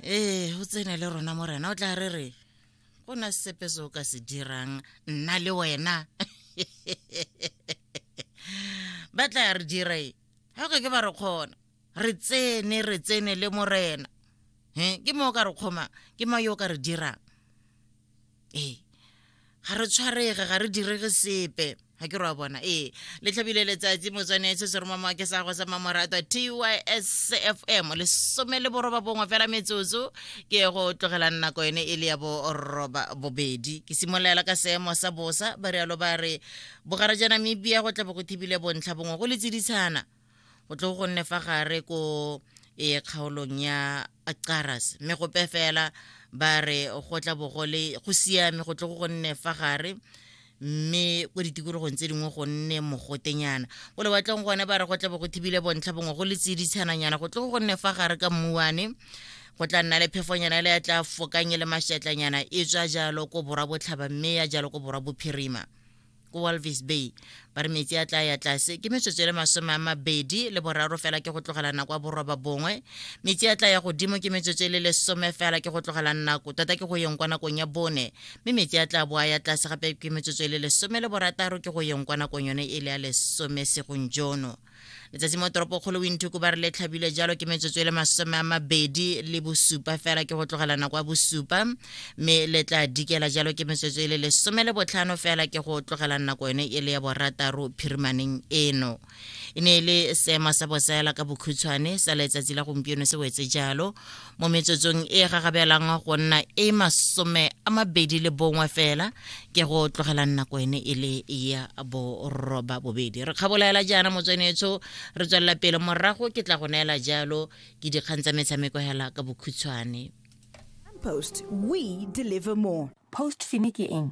ee o tsene le rona morena o tla re re go na sepe se o ka se dirang nna le wena ba tla re dira e ga ke ba re kgona re tsene re tsene le morena ke mo o ka re kgoma ke mo yo o ka re dirang ee ga re tshwarege ga re direge sepe ga ke roa bona ee le tlhabile letsatsi motswane se se romama ke sa go sa mamoratwa tys f m lesome le boroba bongwe fela metsotso ke go tlogelang nako ene e le ya boroba bobedi ke simololela ka seemo sa bosa ba rialo ba re bogara ja namibia go tlabo go thibile bontlha bongwe go le tsiditshana o tle go nne fa gare ko e kgaolong ya Caras mme go pe fela ba re go tla bo go le go siame go tle go nne fa gare mme ko ditikologong tse dingwe go nne mogotenyana ko lewatleng gone ba re go tla bo go thibile bontlha bongwe go le tsiditshananyana go tle go nne fa gare ka mmuane go tla nna le phefonyana le ya tla fokanye le mašatlanyana e tswa jalo ko borwa botlhaba mme ya jalo ko borwa bophirima ko walvis bay ba re metsi a tla ya tlase ke metsotso le masome a mabedi le boraro fela ke go tlogela nako a boroba bongwe metsi a tla ya godimo ke metsotso e le lesome fela ke go tlogela nako tota ke go yeng kwa nakong ya bone mme metsi a tla boa ya tlase gape ke metsotso e le lesome le borataro ke go yeng kwa nakong yone e le ya lesome segong jono letsatsi mo toropokgolo winthuku ba re le tlhabile jalo ke metsotso e le masome a mabedi le bosupa fela ke go tlogela nako ya bosupa mme le tla dikela jalo ke metsotso e le lesome le botlhano fela ke go tlogela nako yone e le ya borataro phirimaneng eno e ne e le seemo sa bosaela ka bokhutshwane sa letsatsi la gompieno se wetse jalo mo metsotsong e gagabelang go nna e masome a mabedi le bongwe fela ke go tlogelang nako ene e le ya boroba bobedi re kgabolaela jaana motswenetsho re tswelela pele morago ke tla go neela jalo ke dikgang tsa metshameko hela ka bokhutshwane post we deliver more post fine ke eng